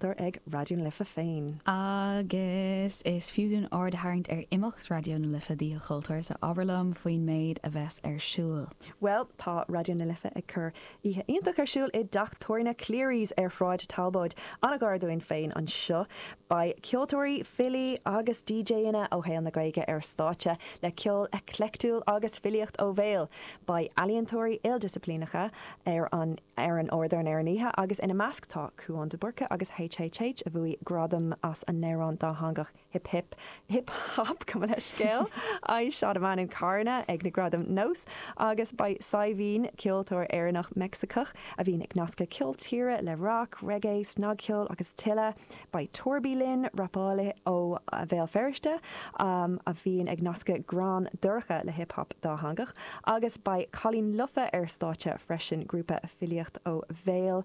tar ag Raidió na Life féin. Agus is fiú dúinn aird a tharraingt ar imeacht Raidió na Life d'Oíche Chultúir, so abair liom faoin méid a bheas ar siúl. Bhuel, tá Raidió na Life ag cur oíche iontach ar siúl i dteach tábhairne Cleary's ar Shráid Talbóid, an-ghar dúinn féin anseo. Beidh ceoltóirí, filí agus DJanna ó shaol na Gaeilge ar stáitse, le ceol eclectiúil agus filíocht ó bhéal. Beidh ealaíontóirí ildisciplíneacha ar an. ar an ardán ar an oíche agus ina measc tá Cúán de Búrca agus HHH a bhuaigh gradam as a n-amhrán dátheangach hip hip hip hap Cuma le Scéal I shot a man in Carna ag na Gradaim NÓS agus beidh Saidhbhín, ceoltóir Éireannach-Meicsiceach a bhíonn ag nascadh ceol tíre le rac, reigé, snagcheol agus tuilleadh. Beidh Torby linn, rapálaí ó Bhéal Feirste a bhíonn ag nascadh greann dorcha le hip hop dátheangach, agus beidh Cailín Lofa ar stáitse freisin, grúpa filíocht ó bhéal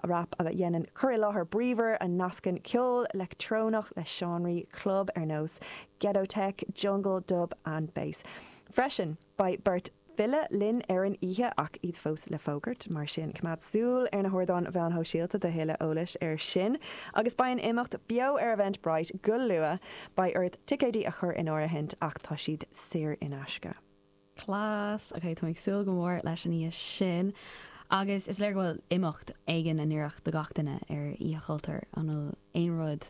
rap a dhéanann cur i láthair bríomhar a nascann ceol leictreonach le seánraí club ar nós ghetto tech, jungle, dub an bass freisin. Beidh beirt file linn ar an oíche ach iad fós le fógairt, mar sin coimeád súil ar na hardáin mheáin shóisialta do thuilleadh eolais air sin. Agus beidh an imeacht beo ar Eventbrite go luath! Beidh ort ticéidí a chur in áirithint ach tá siad saor in aisce. class, ok táim ag súil go mór leis an oíche sin agus is léir go bhfuil imeacht éigin in oiriúint do gach duine ar Oíche Chultúir an bhfuil aon rud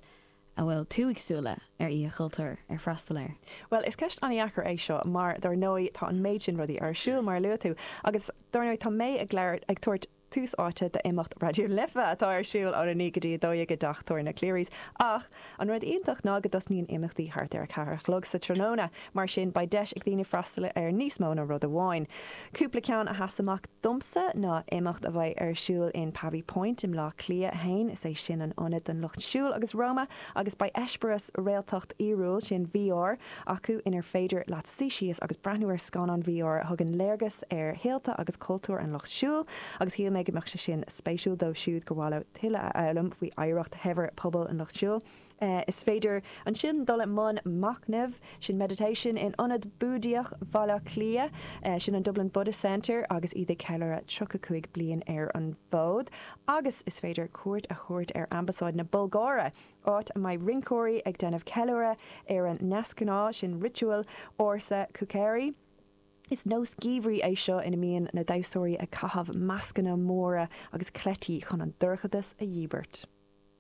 a bhfuil tú ag súil le ar Oíche Chultúir, ar freastal air. Bhuel, is ceist an-dheacair é seo mar, dár ndóigh, tá an méid sin rudaí ar siúl, mar a luaigh tú, agus, dár ndóigh, tá mé ag labhairt, ag tabhairt tús áite d'imeacht Raidió na Life atá ar siúl ón 9 go dtí 12 i dTeach Tábhairne Cleary's ach an rud iontach ná go dtosnaíonn imeachtaí thart ar a ceathair a chlog sa tráthnóna. Mar sin, beidh deis ag daoine freastal ar níos mó ná rud amháin. Cúpla ceann a sheas amach domsa ná imeacht a bheidh ar siúl in Pavee Point i mBleá Cliath a hAon, is é sin an ionad don lucht siúil agus Roma, agus beidh eispéireas réaltacht fhíorúil, sin VR, acu inar féidir leat suí síos agus breathnú ar scannán VR a thugann léargas ar shaolta agus cultúir an lucht siúil agus shíl mé go mbeadh sé sin spéisiúil dóibh siúd gur mhaith leo tuilleadh a fhoghlaim faoi oidhreacht shaibhir pobail an lucht siúil. Is féidir ansin dul i mbun machnaimh, sin meditation, in Ionad Búdaíoch Bhaile Átha Cliath, sin an Dublin Buddhist Centre agus iad ag ceiliúradh 35 bliain ar an bhfód. Agus is féidir cuairt a thabhairt ar Ambasáid na Bulgáire, áit a mbeidh rinceoirí ag déanamh ceiliúradh ar a ndeasghnáth, sin ritual ársa Kukeri. Is nós geimhridh é seo ina mbíonn na damhsóirí ag caitheamh mascanna móra agus cleití chun an dorchadas a dhíbirt.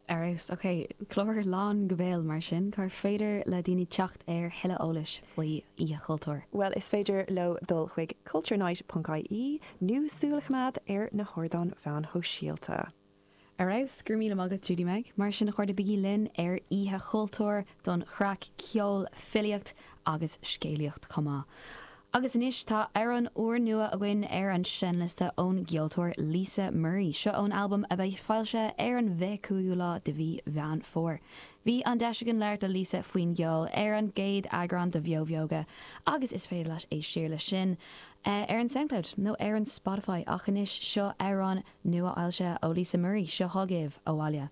Ar fheabhas. Ok. Clár lán go béal mar sin. Cá féidir le daoine teacht ar thuilleadh eolais faoi Oíche Chultúir? Bhuel is féidir leo dul chuig culturenight.ie nó súil a choimeád ar na hardáin mheáin shóisialta. Ar fheabhas. Go raibh míle maith agat, Judy-Meg. Mar sin a chairde, bígí linn ar Oíche Chultúir. don chraic, ceol, filíocht agus scéalaíocht chomh maith. Agus anois tá amhrán úr nua againn ar an seinnliosta ón gceoltóir Lisa Murray, seo ón albam a bheidh foilsithe ar an bhfiche cúigiú lá de mhí Mheán Fómhair. Bhí an deis againn labhairt le Lisa faoin gceol ar an gcéad eagrán de Bheo Bheoga agus is féidir leat éist siar leis sin ar an Soundcloud nó ar an Spotify ach anois seo amhrán nua-fhoilsithe ó Lisa Murray, seo chugaibh, Abhaile.